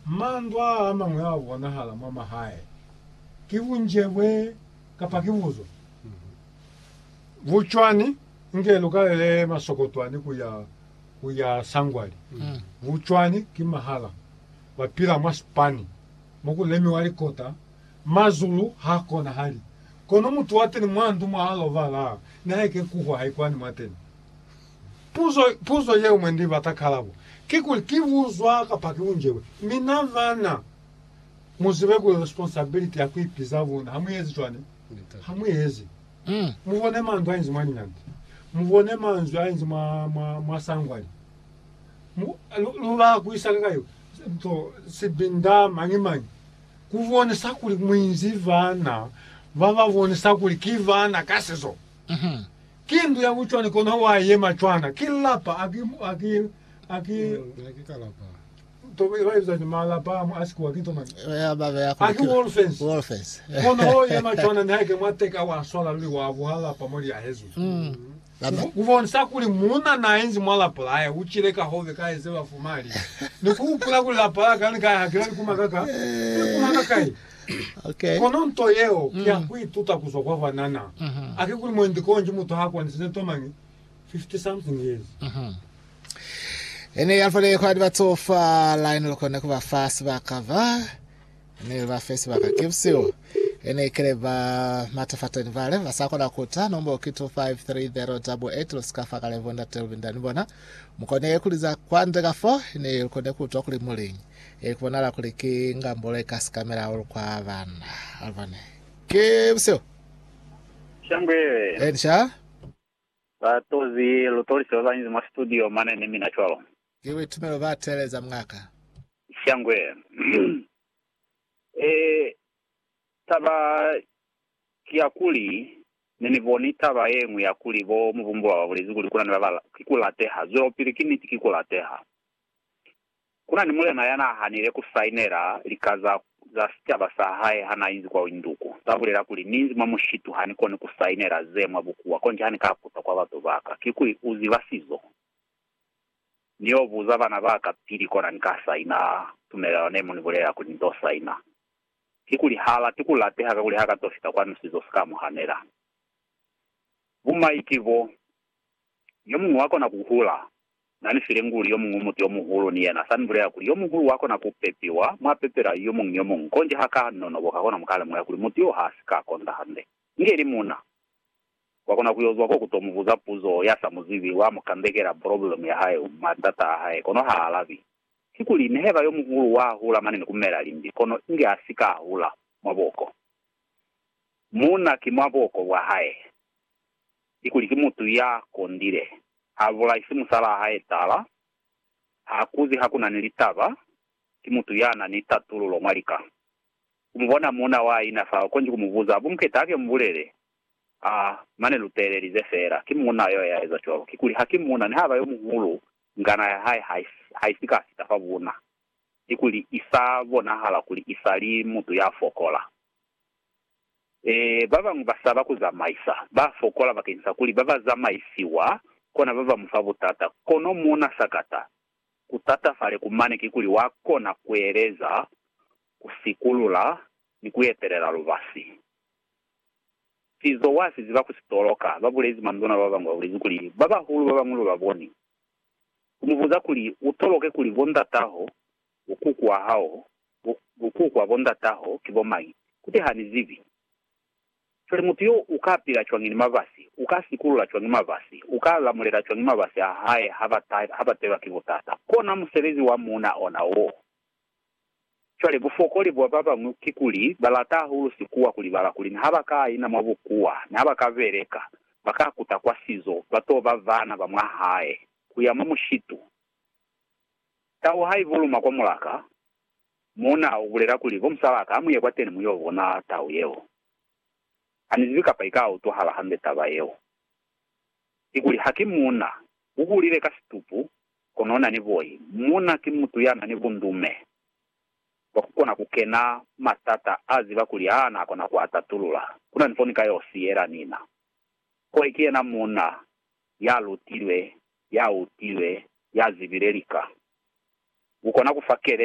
Mandwa a mañwi a bonahala mwa mahae ki bunjebwe kapa ki buzo. Bucwani, Inge lu kalele masokotwani ku ya ku ya sangwali. Bucwani ki mahala. Ba pila mwa sipani mo ku lemiwa likota. Mazulu ha konahali. Kono mutu wa teni mwa ndu mwa a lobala, nihaike kuhwa haikwani mwateni. Puzo, puzo yeo mwe Ni bata kalabo, kikuli ki uzwa kapa ki unjewe? Mi na bana, mu zibe kuli responsibility ya ku ipiza buna, ha mu ezi cwani? Ha mu ezi. Mu bone manzwi a inzi mwa linyambi. Mu bone manzwi a inzi mwa, mwa, mwa sangwani. Mu, lu, lu ba ku isa kakai? Nto, sibinda, mañi mañi. Ku bonisa kuli mu inzi bana ba ba bonisa kuli ki bana ka sizo. Ki ndu ya bucwani kono wa yema cwana. Ki lapa a ki, a ki, a ki, Na ki ka lapa. to, ba ibiza ki malapa a sikwa ki to mani. Ba ba beya A ki wall fence. Wall fence. Kono o yema cwana ni haike mwa teka wa swala luli wa buha lapa mo li yahezwi. Ba ba. Ku, ku bonisa kuli muuna na inzi mwa lapa la hae u cile ka hove ka ezeba fuma li, Ni ku hupula kuli lapa la ka ni ka ya ha ki la likuma ka ka, likuma ka kai? Kono nto yeo ki ya ku ituta ku zwa kwa banana. A ki kuli mwendi konji mutu ha kwanisize nto mañi 50-something years? I ne ya fale kwa libatsofa la ine lu kone ku ba fa sibaka ba ne lu ba fe sibaka ki busihu. I ne ikele ba matafateni bale ba sa kona ku ta nombo ki 253088 lu si ka fa kale bo ndate lu binda ni bona. Mu kone ku liza kwande ka fo, i ne lu kone ku utwa kuli mu liñi. Ki bonala kuli ki ngambolo ye ka sikamela hahulu kwa bana. Albany. Ki buseo. Shangwele. Eni sha. Ba tozi lu tolise ba banzi mwa studio mane ni mina cwalo. Ki buitumelo ba teeleza mng'aka. Shangwele. E, taba ki ya kuli, ne ni boni taba ye ñwi ya kuli bo mubumbulwa ba bulezi kuli kuna ni ba ba, ki ku lateha. Zwelopili, ki niti, ki ku lateha. Ku na ni mulena ya n'a hanile ku sainela lika za za sicaba sa hae ha n'a inzi kwa Windhoek. Ku sa bulela kuli, Ni inzi mwa mushitu, ha ni koni ku sainela ze mwa bukuwa. Konji ha ni ka kuta kwa batu ba ka, kikuli u ziba sizo? Ni y'o buza bana ba ka pili, kona ni ka saina tumelelano ne mu ni bulelela kuli ni t'o saina. Kikuli h'a lati ku lateha kakuli h'a ka t'o fita kwanu sizo si ka mu hanela. Bumai ki bo. Yomuñwi wakona kuhula. Na ni file nguli yomuñwi muti yomuhulu, ni yena sani bulela kuli, Yomuhulu wakona ku pepiwa, mwa pepela yomuñwi ni yomuñwi, konji ha ka nonoboka kona muka lemuhela kuli muti yo ha si ka konda hande. Inge ili muna, wakona ku yo zwa ko ku to mu buza puzo ya sa mu zibi, wa mu kandekela poloblemu ya hae, matata a hae, kono ha alabi. Kikuli, nihaiba yomuhulu wa hula mane ni ku mela limbi, kono inge a si ka hula mwa buoko, muna ki mwa buoko bwa hae. ni kuli ki mutu ya kondile. Ha bulaisi musalaa hae taala, ha akuzi ha ku na ni litaba, ki mutu ya na ni tatululo mwa lika. Ku mu bona muuna wa ina fa u konji ku mu buza, Bu Muketa ke mu bulele? Ha, mane lu teelelize feela. Ki muuna yo ya eza cwalo. Kikuli, ha ki muuna, nihaba yo muhulu, ngana ya hae ha, ha i si ka fita fa buuna, ni kuli i sa bonahala kuli i sa li mutu ya fokola. Ee, ba bañwi ba saba ku zamaisa, ba fokola bakeni sa kuli ba ba zamaisiwa, kona ba ba mu fa butata. Kono mo na sakata ku tatafale ku mane kikuli wa kona ku eleza, ku sikulula, ni ku etelela lubasi. Sizo wa si ziba ku si toloka. Ba bulezi manduna ba bañwi ba bulezi kuli ba bahulu ba bañwi lu ba boni, ku mu buza kuli u toloke kuli bo ndataho, bo kuku wa hao, Bo, bo kukwa, bo ndataho, ki bo mañi? Kuti, Ha ni zibi. Cwale mutu yo u ka pila cwañi ni mabasi? U ka sikulula cwañi mabasi? U ka lamulela cwañi mabasi a hae ha ba ta, ha ba telwa ki butata? Kona musebezi wa muuna ona woo. Cwale, bufokoli bwa ba bañwi kikuli ba lata hahulu sikuwa ku libala kuli ni ha ba ka ina mwa bukuwa, ni ha ba ka beleka, ba ka kuta kwa sizo, ba to ba baana ba mwa hae, ku ya mwa mushitu. Tau ha i buluma kwa mulaka, muuna u bulela kuli, Bo musalaka, ha mu ye kwateni mu yo bona tau yeo. Ha ni zibi kapa i ka utwahala hambe taba yeo. Kikuli ha ki muuna, u kulile ka situpu, kono u na ni boi. Muuna ki mutu ya na ni bundume bwa ku kona ku kena matata a ziba kuli ha na kona ku a tatulula. Ku na ni fo ni ka yo siyela nina. Koi ki yena muuna ya lutilwe ya utile, ya zibile lika, ku kona ku fa kelezo.